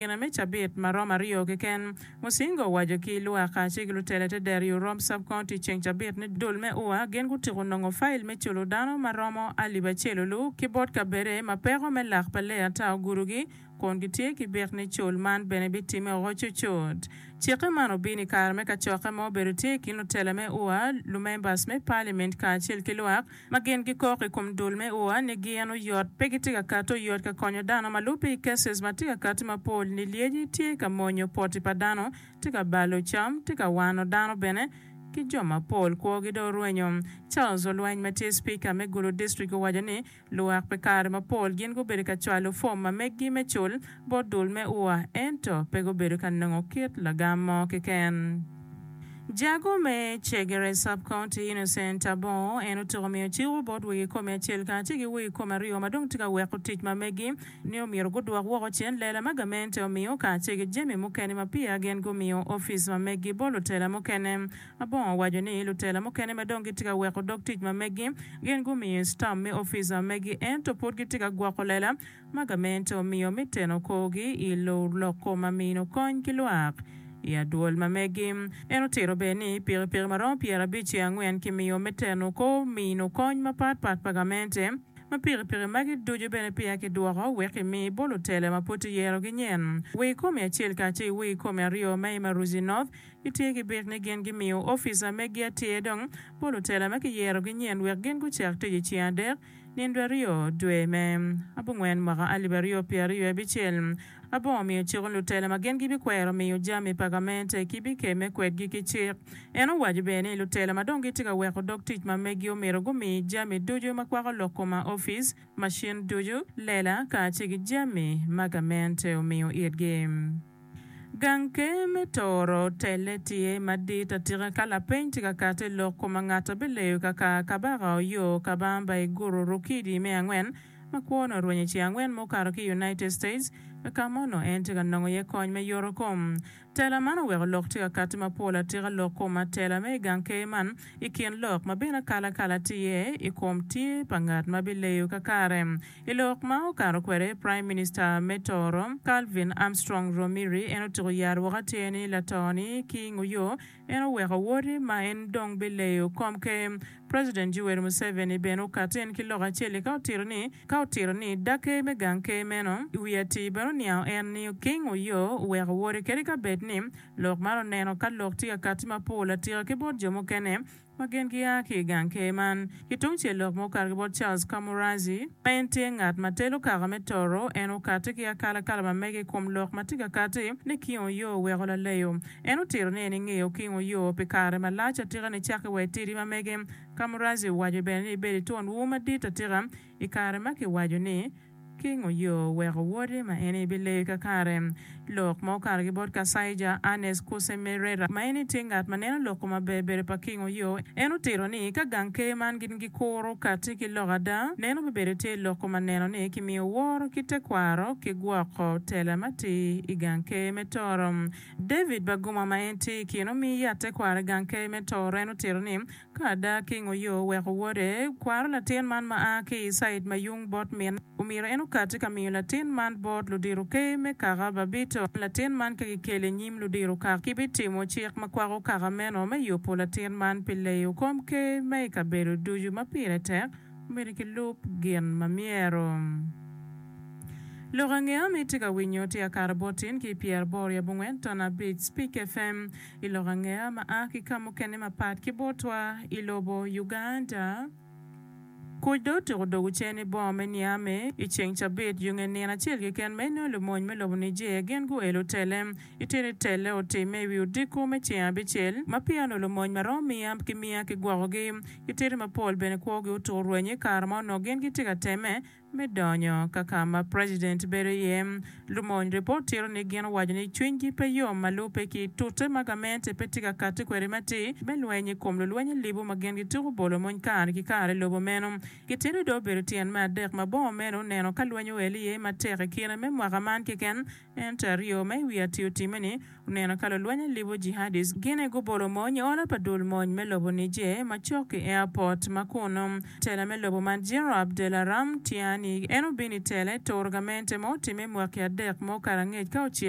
gina me cabit ma romo aryo keken. Musinga owaco ki Lwaka ci ki lutele te dero yo Rome Sub County ceng cabit ni dul me ua gin gutyeko nongo fayil me culo dano ma romo alip acel olu ki bot kabede ma peko me lak pa lee ata ogudu gi kun gitye ki bik ni cul man bene bitime oko cucut. Cikke man obino i kare me kacokke ma obedo tye i kin lutele me ua, lumembers me parliament kacel ki lwak. ma gin gikok i kom dul me ua ni gin oyot, pe gitye ka kati oyot ka konyo dano ma lubbe i cases ma tye ka kati mapol ni lyeci tye ka monyo poti pa dano, tye ka balo cam, tye ka wano dano bene ki jo mapol kwogi dong orwenyo. Charles Olweny ma tye Speaker me Gulu District owaco ni luwak pi kare mapol gin gubedo ka cwalo form ma meggi me cul, bot dul me ua ento pe gubedo ka nongo kit lagam mo keken. Jago me Chegere Sub-County, Innocent Abongo, en otuko miyo cik bot wegi komi acel kacel ki wegi komi aryo ma dong tye ka weko tic ma megi ni omyero gudwok woko cen lela ma gamente omiyo kacel ki jami mukene ma peya gin gumiyo opic ma megi bot lutela mukene. Abongo owaco ni lutela mukene ma dong gitye ka weko dog tic ma megi gin gumiyo stamp me opic ma megi ento pud gitye ka gwoko lela Magamento omiyo me teno korgi i lor loko ma mino kony ki lwak i adwol ma megi. En otito bene ni pikipiki ma romo pyerabic ki angwen kimiyo me teno kor mino kony mapat pat pa gamente, ma pikipiki magi ducu bene peya kidwoko wek kimi bolo tele ma pud kiyerogi nyen Wii Komi Acel kacel ki Wii Komi Aryo ma i Maruzi North gitye ki bit ni gin gimiyo officer megi atir dong bolo tele ma kiyero gi nyen wek gin gucak tic i ceng adek Nindwe aryo dwe me abongwen mwaka alip aryo pye aryo abicel, abongo miyo ciko lutela ma gin gibikwero miyo jami pa gamente ki bikemme kwedgi ki cik. En owaco bene ni lutela ma dong gitye ka weko dog tic ma megi omyero gumi jami ducu ma kwako lok koma ofic, macin ducu, lela, kacel ki jami ma gamente omiyo itgi. Gang Ker me Toro telle tye madit atika ka lapeny tye ka kati i lok koma ngat a bileyo kaka Kabaka oyo kabamba i guru Rukidi me angwen ma kwone orwenyo i ci angwen ma okato ki i United States ka ka ma onongo en tye ka nongo iye kony me yoto kom. Tela man oweko lok tye ka kati mapol atika lok koma tela me i gang ker man i kin lok ma bene akalakala tye i kom tye pa ngat ma bileyo kakare I lok ma okato kwede, Praim Minista me Tooro, Calvin Armstrong Romiri en otyeko yaro woko atir ni lato-ni ki nguyo en oweko woti ma en dong bileyo kom ker. President Yoweri Museveni bene okato en ki lok acel-li ka otito ni ka otito ni dag ker me gang ker meno i wi atir bene oniango en ni ki nguyo oweko woti kadi ka bed ni lok man oneno ka lok tye ka katti mapol atika ki bot jo mukene ma gin gia ki i gang ker man. Ki tungcel lok ma okato ki bot Charles Camorrazzi, ma en tye ngat ma telo kaka me toro, en okati ki akalakala ma mege i kom lok ma tye ka kati ni kingo yo weko laleyo. En otito ni en ingeyo kingo yo pi kare malac atika nicaki wa itidi ma mege. Camorrazzi owaco bene ni ibedo itwon ur madit atika i kare ma kiwaco ni, Kingo yo weko wode ma en aye bileyo kakare. Lok ma okato ki bot Kasaija Ernest Kusemerera ma en aye tye ngat ma neno loko maber bedo pa kingo yo, en otito ni ka gang ker man gin gikuro kati ki lok ada, neno me bedo tye loko ma neno ni kimiyo woro ki tekwaro ki gwoko tela ma ti i gang ker me Toro. David Baguma ma en tye i kin omi yat tekwaro i gang ker me Toro en otito ni Ka ada kingo yo oweko wode, kwaro latin man ma a ki i cid ma yung bot mine, omyero en okati ka miyo latin man bot ludito ker me kaka babito. Ka latin man pe kikeli i nyim ludito kaka, kibitimo cik ma kwako kaka meno me yubo latin man pi leyo kom ker ma i kabedo ducu ma pire tek. Omyero kilub gin ma myero. Lok ange ami tye ka winyo tye akato bot tin ki pyeraboro yabo ngwen ton abic, Speak FM, I lok angeya ma a ki ka mukene mapat ki botwa i lobo Uganda, kuc dong otyeko dogo cen i boma me Niame i ceng cabit yo nge nino acel keken ma inongo lumony me lobo Niger gin guelo tele. Itino itelle otimme i wi odiko me ceng abicel ma peya onongo lumony maromo miya ki miya ki gwokogi. Kitito mapol bene kwogi otur rwenyo i kare ma onongo gin gitye ka temme Me donyo ka ka ma president bedo iye, lumony report tito ni gin owaco ni cwinygi pe yom ma lubbe ki tute ma gamente pe tye ka kati kwede matir me lweny i kom lulweny alibu ma gin gituko bolo mony kare ki kare i lobo meno. Gitito dong obedo tyen me adek ma bongo meno oneno ka lweny oel iye matek i kine me mwaka man keken, Ento aryo ma i wi atir timme ni oneno ka lulweny alibo jihadis gine gubolo mony i ola pa dul mony me lobo Niger macok ki airport ma kunnu. Tela me lobo man General Abdelaram Tiani en obino i tela i Tour gamente ma otimme mwaki adek ma okato angec ka ocik.